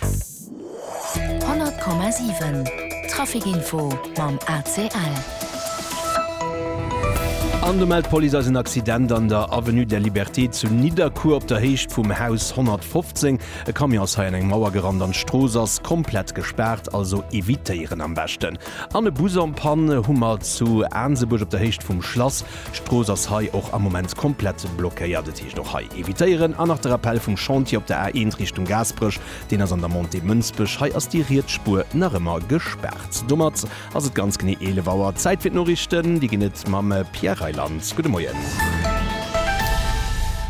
100,7 Trafic info mam ACL. An do mellt d'Police eis en Accident an der Avenue der Liberté zu Nidderkuer op der Héicht vum Haus 115. E Camion ass hei an eng Mauer gerannt an d'Strooss ass komplett gespaart, also evitéieren am beschten. An e Bus en panne hu mer zu Aansebuerg op der Héicht vum Schlass. D'Strooss ass hei och am Moment komplett blockéiert. Et heescht och hei evitéieren. An nach de Rappell vum Chantier op der A1 Richtung Gaasperech, deen ass an der Montée Mënsbech. Hei ass déi riets Spuer nach ëmmer gespaart. Domat ass et ganz genee 11 Auer. Zäit fir d'Noriichten. Déi ginn et mam Pierre Reyland. Gudde Moien.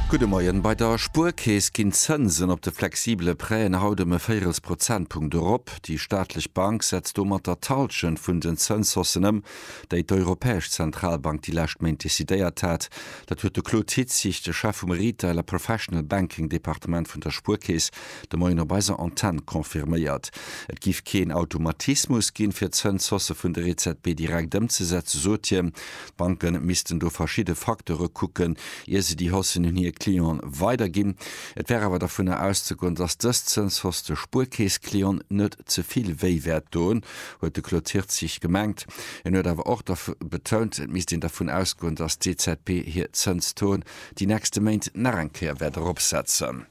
Gudde Moien. Bei der Spuerkeess ginn d'Zënsen op de flexibele Prêten haut ëm e Véirels Prozentpunkt erop. Déi staatlech Bank setzt domatter d'Hallschent vun den Zënshaussen ëm. déi d'Europäesch Zentralbank déi lescht Méint decidéiert hat. Dat huet de Claude Hitzig, de Chef vum Retail a Professional Banking Departement vun der Spuerkeess, de Moien op eiser Antenn confirméiert. Et géif keen Automatismus ginn, fir d'Zënshausse vun der EZB direkt ëmzesetzen, sot hien. D'Banke missten do verschidde Facteure kucken, ier se déi Haussen un hir Clienten weiderginn. Et wär awer dovunner auszegoen, datt dës Zënshausse de Spuerkeess-Clienten net ze vill wéi wäert doen. huet de Claude Hirtzig gemengt. En huet awer och betount, et misst een dervun ausgoen, datt d'EZB hir Zënstaux déi nächste Méint nach eng Kéier wäert eropsetzen.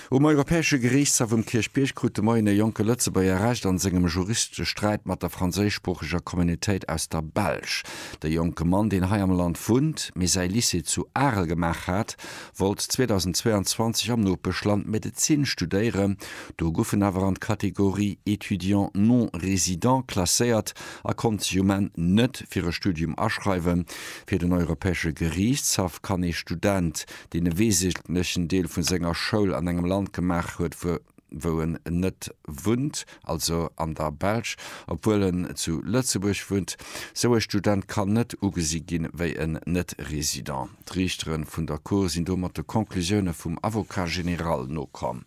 Um Europäesche Geriichtshaff um Kierchbierg krut de Moien e jonke Lëtzebuerger Recht a sengem Juristesträit mat der franséischsproocheger Communautéit aus der Belsch. De jonke Mann, deen hei am Land wunnt, mee säi Lycée zu Arel gemaach hat, wollt 2022 am Nopeschland Medezin studéieren, do guff en awer an d'Kategorie Étudiant non résident klasséiert a konnt sech um Enn net fir e Studium aschreiwen. Fir den Europäesche Geriichtshaff kann ee Student, deen e weesentlechen Deel vu senger Schoul an engem Land gemaach huet, wou. wou en net wunnt, also an der Belsch, obwuel en zu Lëtzebuerg wunnt. Sou e Student kann net ugesi ginn, wéi en Net-Resident. D'Riichteren vun der Cour sinn domat de Conclusioune vum Avocat général nokomm.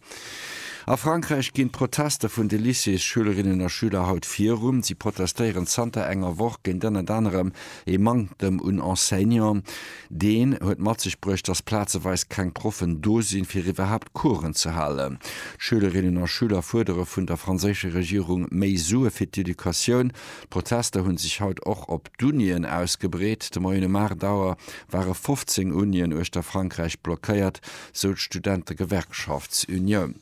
A Frankräich ginn d'Protester vun de Lycéesschülerinnen a schüler haut virun. Si protestéieren zanter enger Woch géint ënnert anerem ee Manktem un Enseignant. Deen huet mat sech bruecht, dass plazeweis keng Proffen do sinn, fir iwwerhaapt Coursen ze halen. D'Schülerinnen a Schüler fuerdere vun der franséischer Regierung méi Sue fir d'Educatioun. D'Protester hunn sech haut och op d'Unien ausgebreet. De Moien um 8 Auer ware 15 Unien uechter Frankräich blockéiert, sou d'Studentegewerkschaftsunioun.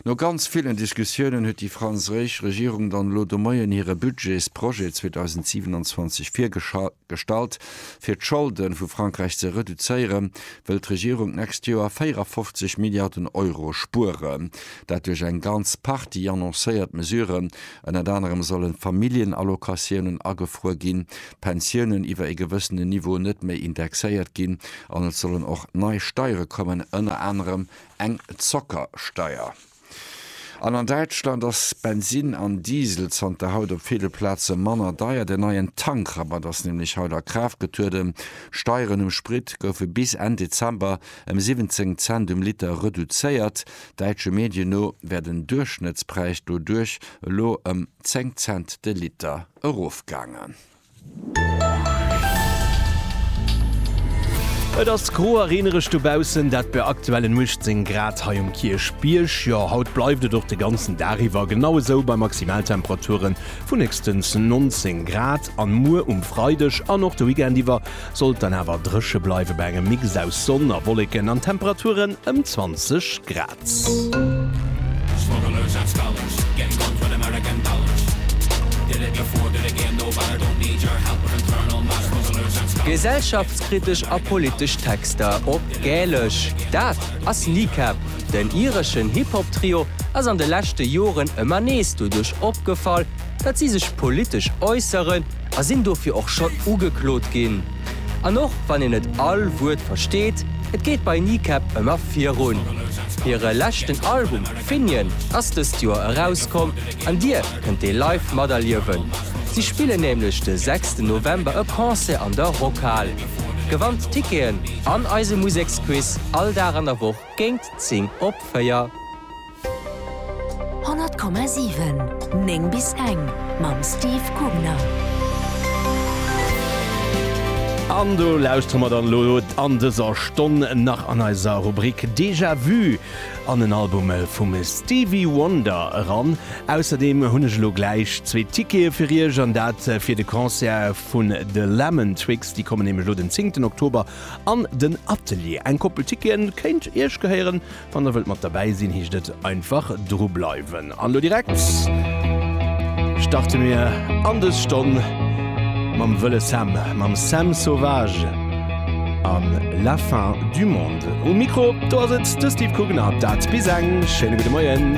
No ganz villen Diskussiounen huet déi franséisch Regierung dann elo de Moien hire Budgetsprojet 2027 virgeschall. Gestallt. Fir d'Scholde vu Frankräich ze reduzéiere wëll d'Regierung d'nächst Joer 54 Milliarden Euro spueren. Dat duerch eng ganz Partie annoncéiert Mesuren. Ënnert anerem sollen d'Familljenallocatiounen agefruer ginn, d'Pensiounen iwwer ee gewëssenen Niveau net méi indexéiert ginn an et sollen och nei Steiere kommen, ënner anerem eng Zockersteier. An an Däitschland ass Bensinn an Diesel zanter haut op ville Plaze manner deier. Den neien Tankrabatt ass nämlech haut a Kraaft getrueden. Steieren um Sprit goufe bis Enn Dezember ëm 17 Cent um Liter reduzéiert. Däitsche Medien no wär den Duerchschnëttspräis doduerch elo ëm 10 Cent de Liter erofgaangen. Et ass gro a reenereg dobaussen, dat bei aktuellen 18 Grad hei um Kierchbierg. Jo, haut bleift et och de ganzen Dag iwwer genau esou bei Maximaltemperature vun héchstens 19 Grad. An muer um Freideg an och de Weekend iwwer soll et dann awer dréche bleiwen, bei engem Mix aus Sonn a Wolleken an Temperaturen ëm 20 Grad. Gesellschaftskritesch a politesch Texter op Gälesch, dat ass Kneecap. Den ireschen Hip-Hop-Trio ass an de leschte Joren ëmmer nees doduerch opgefall, datt si sech politesch äusseren a sinn dofir och schonn ugeklot ginn. An och wann een net all Wuert versteet, et geet bei Kneecap ëmmer virun. Hire leschten Album Finian ass dëst Joer erauskomm an Dir kënnt dee live materliewen. Si spillen nämlech de sechsten November e Concert an der Rockhal. Gewannt d'Ticketen an eise Museksquiz all Dag an der Woch géint 10 op 4. 100,7 9 bis eng mam Steve Gubner. An do lauschtere mer dann elo an dëser Stonn nach an eiser Rubrik Déjà Vu an en Album vum Stevie Wonder eran. Ausserdeem hunn ech elo gläich zwee Tickete fir Iech, an dat fir de Concert vun de Lemon Twigs. Déi kommen nämlech elo den 10 Oktober an den Atelier. Eng Koppel Ticketen kéint Iech gehéieren, Wann der wëllt mat derbäi sinn, heescht et einfach dru bleiwen. An elo direkt starte mir an dës Stonn mam Wëlle Sam, mam Sam Sauvage a La fin du monde. Um Mikro, do ass et de Steve Kugener. Dat bis eng. Schéine gudde Moien.